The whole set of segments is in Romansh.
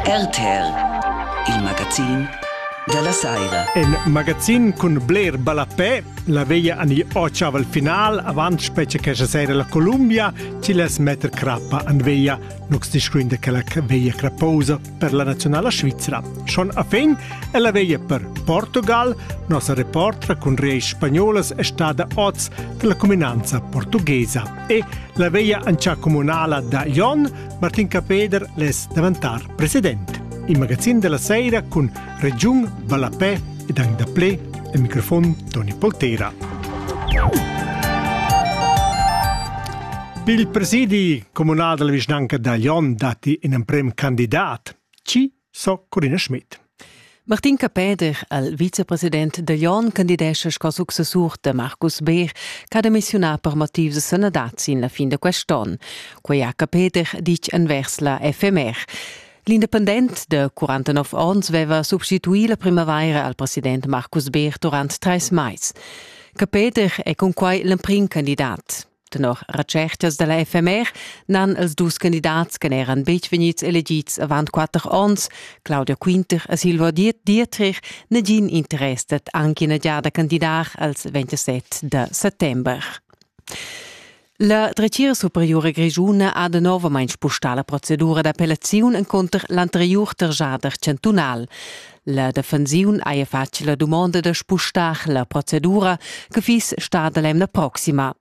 RTL, il magazin della saira. In magazin cun bler ballapè, la veglia ani occiaval final, avant specie che sera la Columbia, ci les metter crappa an veglia, nux discuinde che la veglia crapposa per la nazionala Svizzera. Schon a fin è la veglia per Portugal, nossa reportra cun reis spagnolas è stata oz della cuminanza portughesa. e la veglia ancia comunala da Jon, Martin Capeder les davantar president. Il magazin della sera con Regiun Vallapè ed anche da ple, il microfon Toni Poltera. Il presidi comunal della vicinanca da Jon dati in emprem candidat. Ci So Corinna Schmidt. Martin Capeder, il vicepresident da Jon, candidescha sco successur da Marcus Beer, che ha demissionà per motivs sanadad sin la fin da quest'onn. Quei ha Capeder ditg envers la FMR. L'independent de 49 onns veva substituì la primavaira al president Marcus Beer durant treis mais. Capeder è cun quai l'emprim candidat. Tenor retschertas da la FMR n'han els dus candidats che n'eran betg vegnids elegids avant quatter onns, Claudia Quinter e Silvio Dietrich, nagin interess dad anche ina giada candidar als 27 da settember. La dretgira superiura grischuna ha danovamain spustà la procedura d'appellaziun encunter l'anteriur tergiader chantunal. La defensiun haja fatg la dumonda da spustar la procedura che fiss stada l'emna proxima.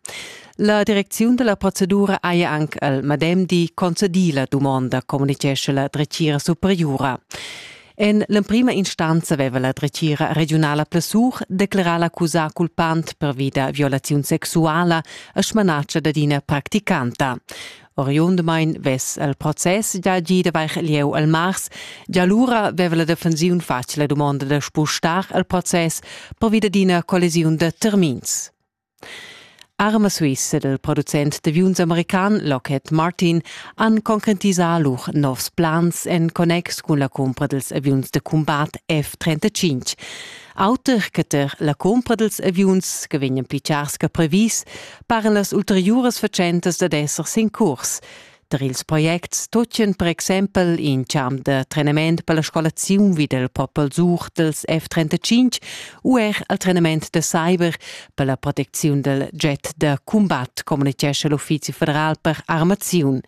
La direcziun della procedura haja anche al madem di concedì la dumonda, communichesce la dretgira superiora. En l'emprima instanza aveva la dretgira regionala Plessur declarà l'accusà culpant per vita violaziun sexuala a smanatscha dad ina practicanta. Oriundamain vess el process da gida vair lieu al mars, già lura veva la defensiun fatg la dumonda da spustar il process pervia d'ina collisiun da termins. Arma Suisse del producent d'aviuns american Lockheed Martin han concretisà lur novs plans en connex cun la cumpra dels aviuns de combat F-35. Auter che ter la cumpra dels aviuns che vegnan pichars che previs, paran las ulteriuras fatschentas dad esser sin curs. Tar ils projects tutgan per exempel in champ da trenament per la scolaziun vid il Popel Such dels F-35 u er al trenament da cyber per la protecziun dal jet da combat, communitgescha l'Uffizi federal per armaziun.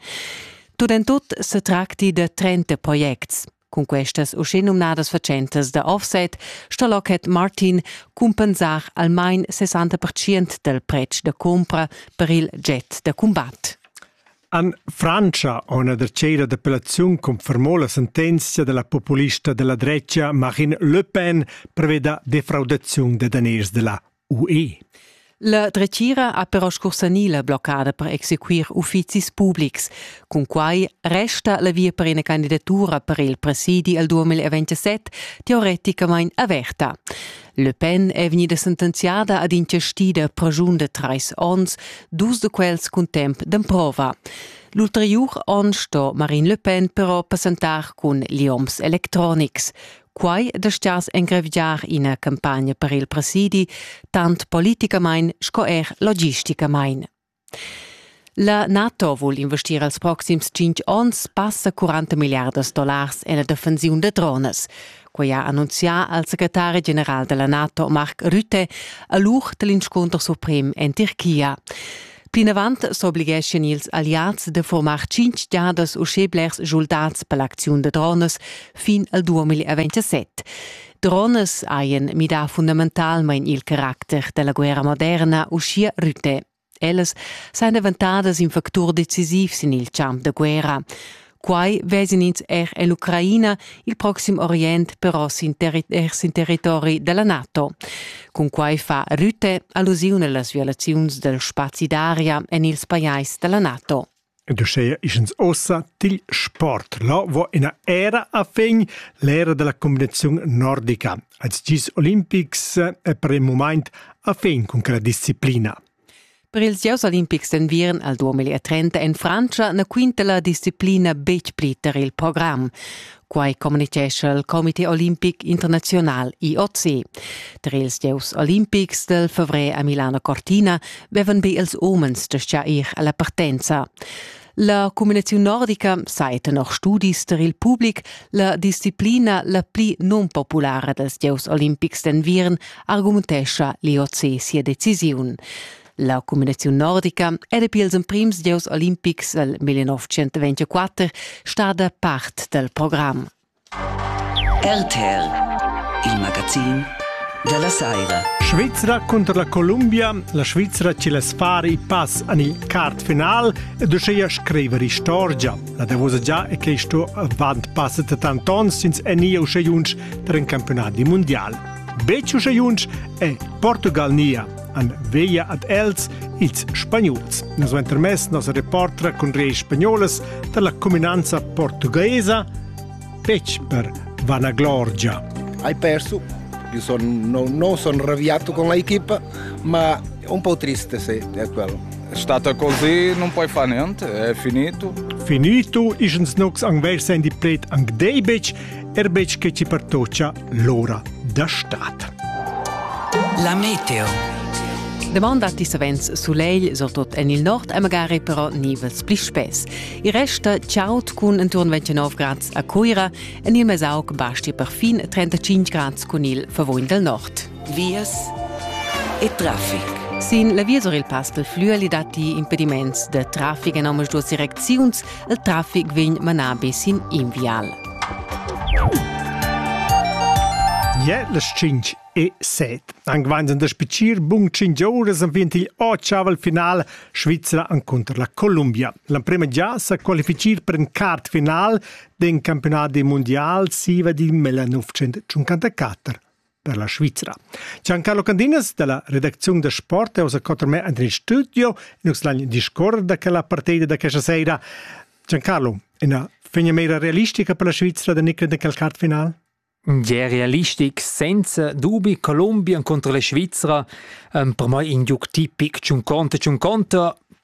Tut en tut se tracti da 30 projects. Cun questas uschenumnadas fatschentas da offset sto Lockheed Martin cumpensar almain 60 del pretsch da compra per il jet da cumbat. En Francia ha una dercera d'appellaziun confermò la sentenzia della populista della drecia Marine Le Pen preveda defraudaziun de daners della UE. La dretgira ha però scursanì la bloccada per exequir uffizis publics. Cun quai resta la via per ina candidatura per il presidi al 2027 teoreticamain averta. Le Pen è vegnida sentenziada ad inchestida pragiun de trais onns, dus de quels cun temp d'emprova. L'ulteriur onn sto Marine Le Pen però passentar cun Lioms Electronics. Quai dastgias engravigiar ina campagna per il presidi, tant politicamain sco er logisticamain. La NATO vul investir els proxims tschintg onns passa 40 milliardas dollars en la defensiun da dronas. Quai ha annunzià al secretari general della NATO Mark Rutte a l'uch dell'inscunter suprem en Tirchia. Plinavant s'obligeschien ils alliads da furmar tschintg giadas uschè blers schuldads per l'acziun da dronas fin al 2027. Dronas hajan midà fundamentalmain il caracter da la guerra moderna, uschia Rutte. Ellas sajan daventadas in factur decisiv sin il champ da guerra. Quai vesin ins er en l'Ucraina, il proxim Orient però sin, terri er sin territori da la NATO. Cun quai fa Rütte allusiun las violaziuns dal spazi d'aria en ils pajais da la NATO. Ed uschea ischens ossa til sport. Lo vo ina era a fin l'era della combinazione nordica. Als gis olimpics è per il moment a fin con quella disciplina. Per ils gieus olimpics d'enviern al 2030 en Frantscha na quinta la disciplina betg pli tar il program. Quai communitgescha il Comité olimpic internaziunal IOC. Tar ils gieus olimpics del favrer a Milano Cortina vevan be ils umens gestà ir alla partenza. La cumünaziun nordica sa e tenor studis tar il public la disciplina la pli nunpopulara dals gieus olimpics d'enviern argumentescha l'IOC sia decisiun. La cumünaziun nordica era pils emprims gieus olimpics dal 1924 stada part dal program. RTL, il magazin dalla saira. Svizra cunter la Columbia, la Svizra ci les fare i pass an il quart final ed uscheia scriver istorgia. La davosa già è che sto avant passet tant ons sins enia uscheiunsch per un campionat di mondial. Bec uscheiunsch è Portugal nia. han veglia ad els ils spagnols. Na suenter mes nos reportra cun reis spagnolas dalla cuminanza portuguesa fetg per vanaglorgia. Hai perso Io sono, no, non sono arrabbiato con l'equipa, ma un po' triste se è quello. È stata così, non puoi fare niente, è finito. Finito, ischens nox ang versa in di pret ang deibec, er bec che ci pertocia l'ora da stat. La meteo. Demanda ti savens sulegl, surtut en il nord, e magari però nivels pli spess. Il resta chaud cun intorno 29 grads a Cuira, en il Mesauc basti perfin 35 grads cun il Verwoin del Nord. Vias e traffic. Sin la via sur il Pass pel Flüeli datti impediments da traffic en ambas duas direcziuns. il traffic vegn manabi sin in vial. Ja, las 5 e 7. Anche wenn es das Piccir bun 5 ore sind wir il Ochaval Final Svizzera contro la Colombia. La prima già sa qualificar per un quart final del campionato mondiale SIVA di 1954. per la Svizra. Giancarlo Candinas della redaczione da sport è osa con me in studio in uslagn discorda che la partita da questa sera. Giancarlo, una fegna mera realistica per la Svizra da nick in calcart final? Ja, realistic, senza dubi, Colombia contro la Svizzera, um, per me in giuc tipic, ciun conta, ciun conta,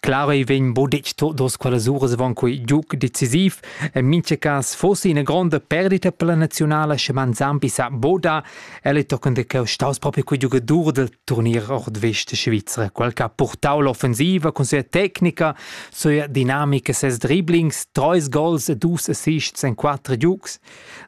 Claro ei vegn bo detg todos quellas uras van quei giug decisiv. En mincha cas fosse ina gronda perdita per la nazionala sche man Zampi sa boda. El ei tochen de cheu staus proprio quei giugadur del turnier nordvest de Svizra. Quel che ha portau l'offensiva con sia tecnica, sua dinamica, ses dribblings, treis gols e dus assists en quattro giugs.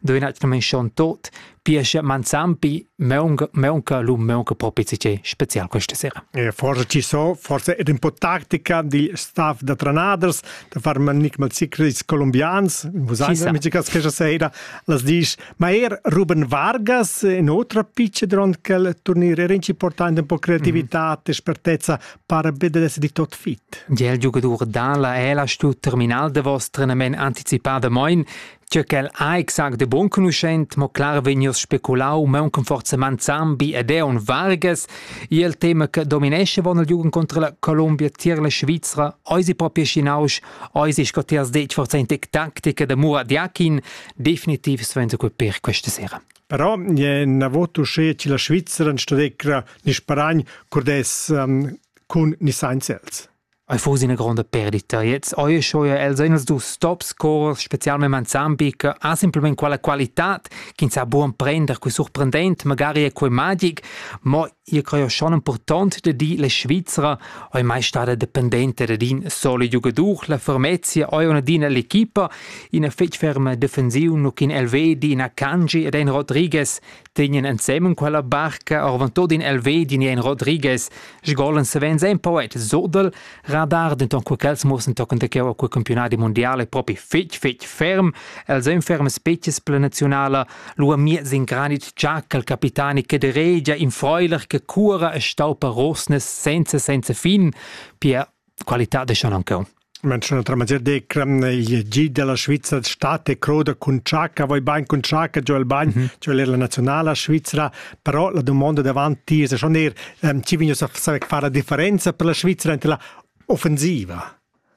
Do in atgnament schon tot. Pia sche manzampi meunca meunca lu meunca propi tgei special questa sera. E forse ci so, forse era un po' tactica di staff da Tranaders da far manic mal secrets colombians, vos ans amici cas questa sera, las disch, ma er Ruben Vargas in otra picce dronkel turnier era importante un po' creatività, mm espertezza per vedere essere di tot fit. Il giocatore dalla è la stu terminal de vostra men anticipada moin Tgö ch'el ha exact e bonconuschent, mo clar vegnius speculau mauncan forza Manzambi ed Eon Vargas, i el tema che dominesce von el Jugend contra la Colombia tier la Svizra, eisi propri schi nausch, eisi sco ti has detg forza in tec taktica da Murad Yakin, definitiv sventa quel per questa sera. Però è na voto che la Svizzera in stadecra ni sparagn cordes um, cun ni sainz els. Ei fuss ina gronda perdita. Gliez ei sco els ein els dus tops cors, specialmein ensemble, che ha simpelmente quella qualitad ch'ins sa buca prender qui surprendent, magari è quei magic, mo io creo schon important da dir la Svizzera ei mai stada dependente da in solo giugadur, la Formezia ei una d'ina l'equipa, ina fetg ferma defensiv, nu ch'in Elvedi, ina Kanji ed ein Rodriguez tegnan ensemen quella barca orvantoda in el vedin e in Rodriguez, sgolan savens ein poet surdel, radar denton co quels morsen tochen da cheu a quel campionadi mondiale propi fetg fetg ferm, els ein ferm species pla nazionala, lu a miez in granit tschaccal capitani che de regia in freuler che cura e staupa rosnes senza senza fin, pia qualità de schon ancheu. Menziun otra maniera decra il G della Svizzera state croda cun Ciacca, voi bain cun Ciacca, giò il bagn, mm -hmm. giò la nazionala svizzera, però la domanda davanti ti è schon er, um, ci vigno saper fare la differenza per la Svizzera ante la offensiva?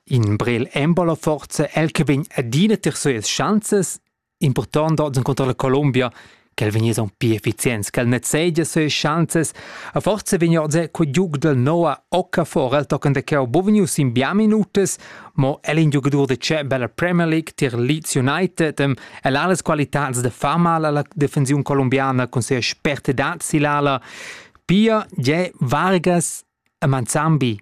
In Brel Embolo forse el che vegn adina ter suas chanzes Impurtant dat encunter la Colombia ch'el vegniss aunc pli efficients, ch'el nezegia sue schanzas a forza vegn oz co giug del Noah Okafor el tochen de cheu bovnius in bia minutas, mo el in giugadur de ceba la Premier League tier Leeds United, dem el ha las qualitads de far mal alla defensiun colombiana cun sia spertedad silala. Pia je Vargas e Manzambi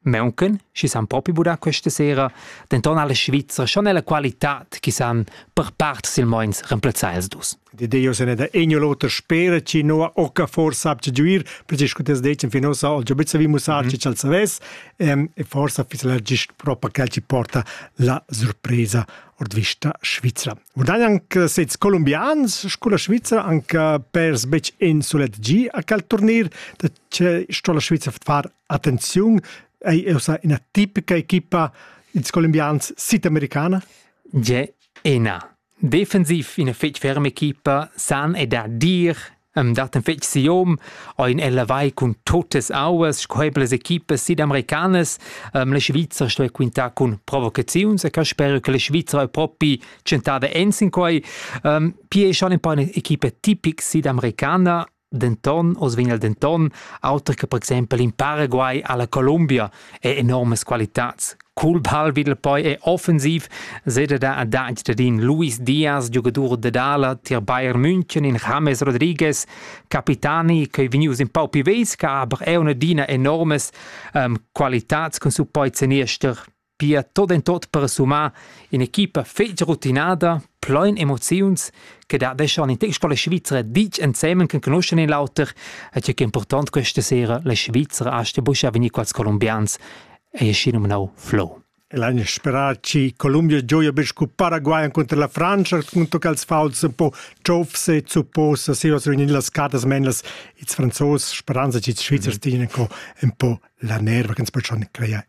Mauncan, chi s'han propi budà questa sera, denton alla Svizra schon ella qualitad chi san per part silmeins remplazzar ils dus. De Dio se ne da egno l'oter spera chi no occa forsa abgegiuir, perché discutes decen fin ossa al giobizza vi mussar chi ch'al savess, ehm, e forsa fis la gist propa quel chi porta la surpresa ord vista Svizra. Urdan anche sezs colombians sculla Svizra anche pers bec in sulet gi a quel turnir, da che sto la Svizra far Attenziun, ei eu sa ina tipica equipa ils colombians südamericana? Je ena. Defensiv ina fetg ferma equipa san e dar dir um dat ein fetg siom ein ella vai cun totes auas scoebles equipas sidamericanas um, la Svizra sto quintar cun provocaziuns e ca spero che la Svizra è propi centada ensin quai um, pie schon ein paar equipa tipic sidamericana Denton, oz vegn el denton, auter che per exempel in Paraguay alla Colombia, è enormes qualitads. Col ball vid poi è offensiv, seda da a dagl dadin Luis Diaz, giogadur dad ala tier Bayern München, in James Rodriguez, capitani che ei vegnius in pau pi vesca, aber è una dina enormes um, qualitads cun su poi zeniester Pia tot en tot per summar in'equipa fetg rutinada, plein emoziuns, che dadeschan in text con la Svizzera ditg ensemen che conoschan in l'auter e tge che è important questa sera la Svizzera aste buscha venir quals colombians e è schi nominau Flo. L'anno sperà ci Colombia gioia per scu Paraguay contro la Francia contro che els fauls un po ciofse zupposa se was in las cartas menas ils franzos speranza ci Svizzers dienen co un po la nerva che ens poi schon creare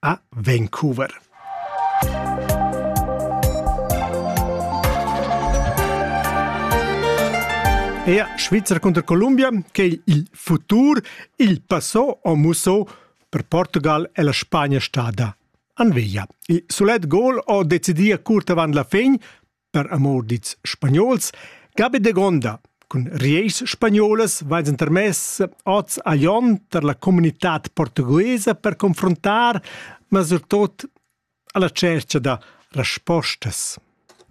A Vancouver. Ea Svizzer contra Columbia che il futur, il passò o musso per Portugal e la Spagna stada. Anveglia. Il sulet gol o decidia curt avant la fin, per amor dits spagnols, gabe de gonda, cun rieis spagnolas vais intermess oz a Jon per la comunitad portuguesa per confrontar, ma surtot alla cerca da respostas.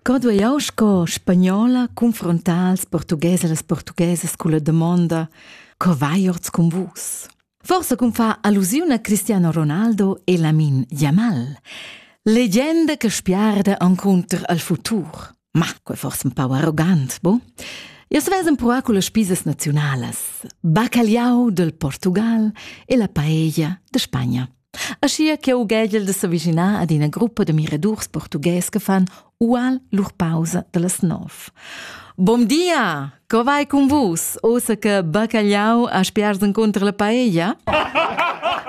Co duei jau sco spagnola confrontar als portugueses e las portuguesas con la domanda co vai orts con vus? Forsa cum fa allusiun a Cristiano Ronaldo e Lamin Yamal. Legenda che spiarda encunter al futur. Ma quel forse un pau arrogant, bo? Io svesem proa con le spisas nazionalas. Bacalhau del Portugal e la paella de Spagna. Aschia che ughegiel de s'avischinar ad ina gruppa de miradurs portughes che fan ual lur pausa dallas nov. Bom dia! Co vai cun vus? Osa che baccagliau a spiars incontro la paella?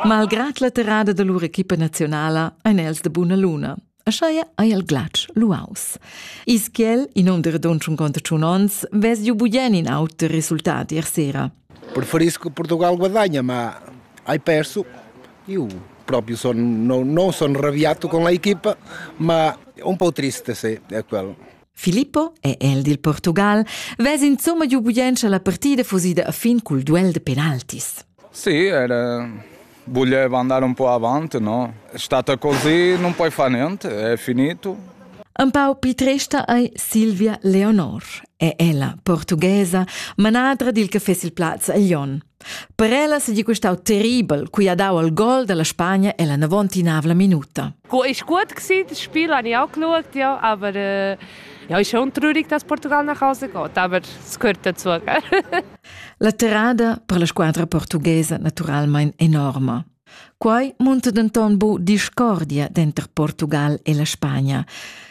Malgrat la terrada de lur equipa nazionala ein els de buna luna. Ascheia ei il glatsch luaus. Is quel, in um de redund 51 onns, vess giu bugen in auter resultat ier sera. Preferisco Portugal guadagna, ma hai perso. Io proprio sono, no, non sono arrabbiato con l'equipa, ma un po' triste se è quello. Filippo è el del Portugal, vess insomma giu bugen la partida fusida a fin col duel de penaltis. Sì, era... Voglievo andare un po' avanti, no? È stata così, non puoi fare niente, è finito. Un pau più trista è Silvia Leonor. È ella, portughesa, manadra del caffè sul Platz a Lyon. Per ella si di questau terribel, cui ha dau il gol della Spagna e la navontinavla minuta. Cu ist gut gewesen, das Spiel habe ich auch geschaut, ja, aber äh, ja, ist schon traurig, dass Portugal nach Hause geht, aber es gehört dazu. La terrada per la squadra portughesa naturalmein enorma. Quai munta denton bu discordia denter Portugal e la Spagna.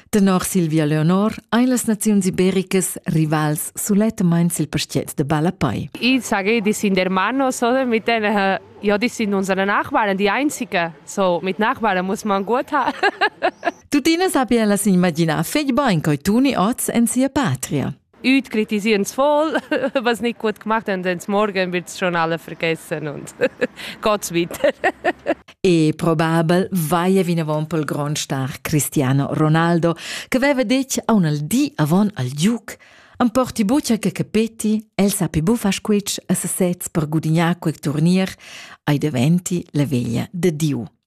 Tenor Silvia Leonor ein las naziuns ibericas rivals sulettamein sil pastiet de Balapai. I sagedis in der Manos oder mit den äh, Jodis in unseren Nachbarn, die einzige. So mit Nachbarn muss man gut haben. Tuttina sappia las immaginar fetg bein coi tuni oz en sia patria. üt critisians voll, was nicht gut gemacht haben, denn morgen wird es schon alle vergessen und Gottes wieder. E probabel vaie vinavon pel grond star Cristiano Ronaldo, che veva detg a un al di avon al Duke Am porti buccia che capeti, el sapi bufa squitsch a sesez per gudignar quel turnier, ai diventi la veglia de Diu.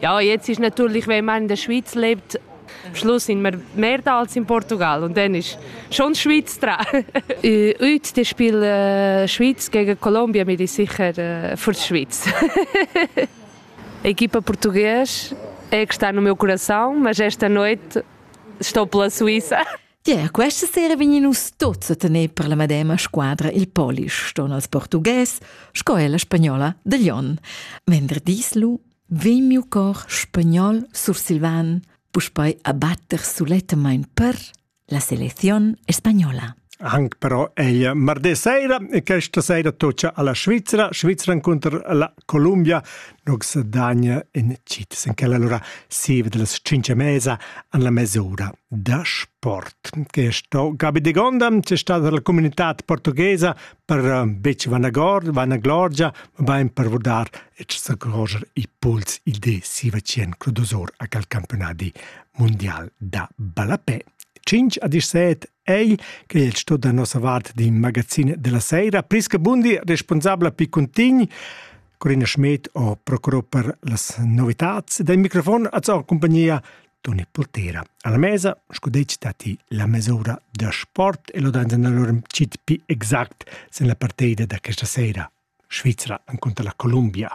Ja, jetzt ist natürlich, wenn man in der Schweiz lebt, am Schluss sind wir mehr da als in Portugal und dann ist schon Schweiz dran. Heute die spielen äh, Schweiz gegen Kolumbien, bin ich sicher äh, für die Schweiz. Equipa portuguesa, está no meu coração, mas esta noite estou pela Suíça. Ja, questa sera vegnimus tuts a tener per la medema squadra il Polish, ston als portugues, sco ella spagnola de Lyon. Venderdis lu vegn miu cor spagnol sursilvan puspei a batter sulettamain per la selecziun spagnola. Anche però è martedì sera e questa sera tocca alla Svizzera, Svizzera contro la Colombia, nux dagna in citis in quella allora sieve della cinque mesa an la mesura da sport. Questo Gabi de Gonda, c'è stata dalla comunità portoghesa per eh, betg vanagord, vanaglorgia, bain per vurdar et sacroger i pols il de Sivacien Crudosor a cal campionadi mondial da ballapè. 5 a 17 ei che il sto da nossa vart di magazine della sera Prisca Bundi responsabla pi contini Corina Schmidt o procurò per las novitats dai microfon a zur compagnia Toni Pultera. Alla mesa, scudeci dati la mesura da sport e lo danza da lorem cit pi exact sen la partida da questa sera. Svizzera incontra la Columbia.